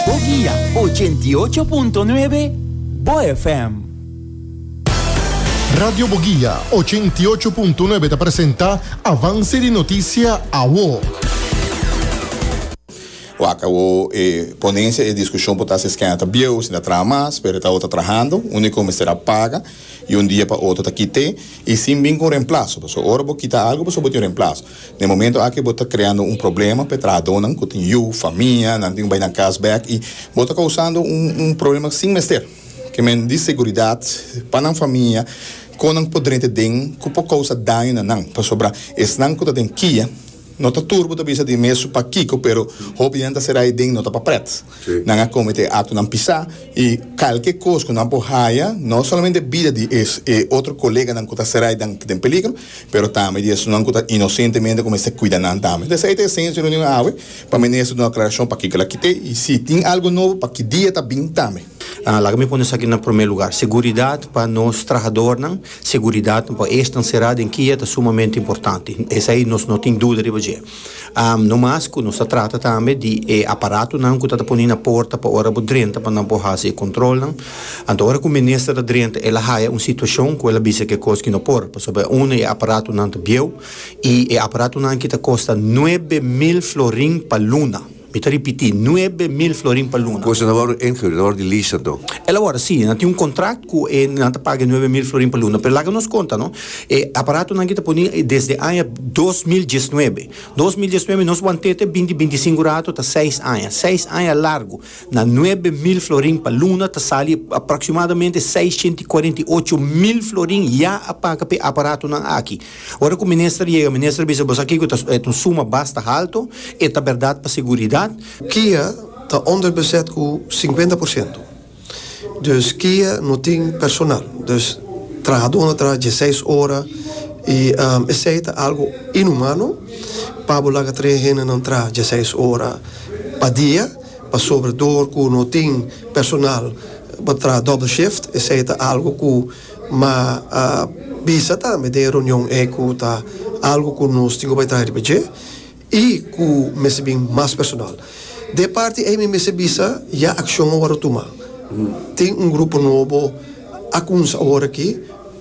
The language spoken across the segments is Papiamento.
Bo guia ochenta i ocho punto nuebe, bo FM. Radio Bo Guia ochenta i ocho punto nuebe ta presenta Avance di Noticia Awo. Wak awo e ponencia e discusion por ta si es kenda ta bieu, si ta traha mas, pero ta awo ta trahando, unico mester a paga y un dia pa otro ta kite y sin bin cu remplazo, pasobra ora bo kita algo pasobra bo tin un remplazo. Na e momento aki bo ta kreando un problema pa e trahadónan ku tin yu, famia, nan tin ku bai na kas bèk i bo ta kousando un un problema sin mester. Ke men di seguridat pa nan famia, kon nan por drenta den ku por kousa daño na nan, pasobra esnan ku ta den kia no ta tur bo ta bisa di mes p'akiko pero hopi di nan ta será ei den no ta pa prèt. Nan a kometé aktonan pisá i kalke kos ku nan por haya, no solamente bida di e otro koleganan ku ta serai dan ku ta den peligro, pero tambe di esnan ku ta inosentemente ku mester kuida nan tambe. Ta esei ta e esensia di e reunion awe, pa menes ta duna aklarashon pakiko el a kit'é i si tin algu nobo pa ki dia ta bin tambe. Laga mi pone esaki na promé lugar, seguridat pa nos trahadornan, seguridat pa esnan será den kia ta sumamente importante. Esei nos no tin duda riba dje. No mas cu nos ta trata tambe di e aparatonan cu ta ta poni na porta pa ora bo drenta pa nan por haci e controlnan. Anto ora cu Minister a drenta el a haya un situacion cu el a bisa cu e cos ki no por pasobra e unda e aparatonan ta bieu y e aparatonan aki ta costa nuebe mil florin pa luna. Mi ta ripití, nuebe mil florin pa luna. Kos nan a wòrdu ingerudo, nan a wòrdu di lisa anto. El a wòrdu sí, nan tin un kontrakt ku e, nan ta paga e nuebe mil florin pa luna. Pero laga nos konta no, e aparatonan ki ta poní desde aña dos mil diesnuebe. Dos mil diesnuebe nos want'é te binti binti sinku rato, ta seis aña. Seis aña largu. Na nuebe mil florin pa luna ta sali aproksimadamente seisshentikorentiyocho mil florin ya a paga p'e aparatonan aki. Ora ku minister yega, minister a bisa, Bo sa kiko ta e ta un suma basta halto, e ta bèrdat pa seguridat. Kia ta onderbezet ku sinkuenta por siento, dus kia no tin personal, dus trahadó na traha dieseis ora i esei ta algu inhumano pa bo laga tres hendenan traha dieseis ora pa dia pasobra dor ku no tin personal bo ta traha doble shift, esei ta algu ku Ma a bisa tambe den e reunion ei ku ta algu ku nos tin ku bai traha riba dje i ku mester bin mas personal. Den e parti ei mi mester bisa ya akshon a wòrdu tuma. Tin un grupo nobo a kuminsa awor aki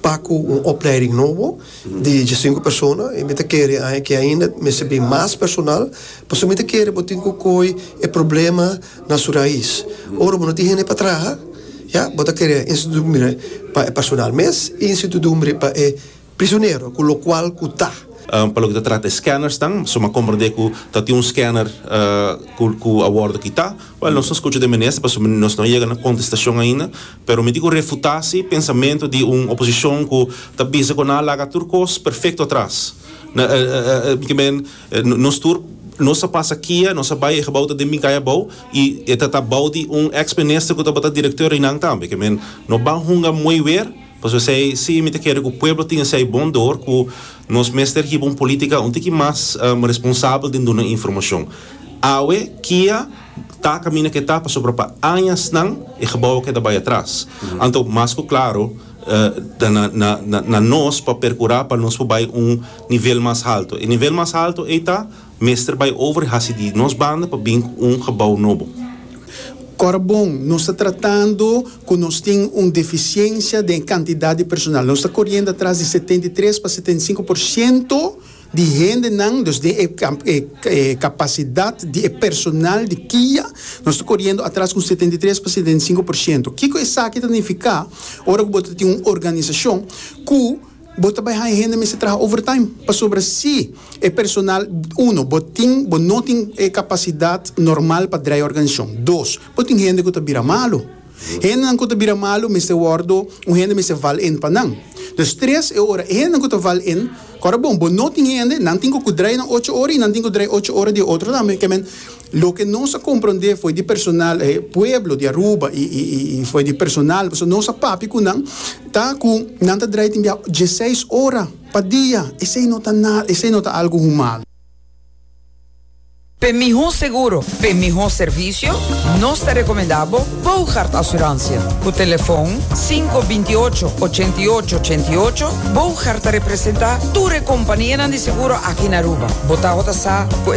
pa ku un opleiding nobo di djesinku persona i mi ta kere aña ke ainda mester bin mas personal pasobra mi ta kere bo tin ku kohe e problema na su rais. Ora bo no tin hende pa traha, ya, bo ta kere institudumbre pa e personal mes y institudumbre pa e prisionero, cu locual cu ta. Pa loke ta trata e scannersnan, suma a comprende cu ta tin un scanner cu a wordo kita. Well, nos no scucha di e Minister pasobra nos no a yega na contestacion ainda, pero mi tin cu refuta si pensamento di un oposicion cu ta bisa cu nan a laga tur cos perfecto atras. Nos tur nos a pasa kia, nos a bai e gebou ta den Minkaya abou y e ta ta bou di un ex minister cu tabata director eynan tambe. Ke men no ban hunga moe weer pasobra esey si mi ta kere cu pueblo tin esey bon door cu nos mester hiba un politica un tiki mas responsabel den duna informacion. Awe kia ta caminda ke ta pasobra pa añasnan e gebou a keda bai atras. Anto mas cu claro ta na nos pa percura pa nos por bai un Nivel mas halto. E nivel mas halto ei ta mester bai over i hasi di nos banda pa bin ku un gebou nobo. Ora bon, nos ta tratando ku nos tin un defisiensia den kantidat di personal. Nos ta koriendo atras di setenta i tres pa setenta i sinku por siento di hendenan, dus den e e kapasidat di e personal di kia nos ta koriendo atras ku setenta i tres pa setenta i sinku por siento. Kiko esaki ta nifiká ora ku bo ta tin un organisashon ku. Bo ta bai haña hende mester traha overtime pasobra si e personal, uno, bo tin, bo no tin e kapasidat normal pa drai e organishon. Dos, bo tin hende ku ta bira malu. Hendenan ku ta bira malu mester wòrdu, un hende mester val en pa nan. Dus tres, e ora e hendenan ku ta val en, kòrda bon, bo no tin hende, nan tin ku ku drai nan ocho ora i nan tin ku drai ocho ora di e otro tambe, ke men, Loke nos a komprondé fo'i di personal e pueblo di Aruba i fo'i di personal pasobra nos a papia ku nan ta ku nan ta drai tin bia dieseis ora pa dia esei no ta nada esei no ta algu human. P'e mihó seguro, p'e mihó servisio, nos ta rekomendá bo Boogaard Asuransia. Ku telefòn sinku binti ocho, ochenta i ocho, ochenta i ocho, Boogaard ta representá tur e kompanienan di seguro aki na Aruba. Bo tabata sa ku.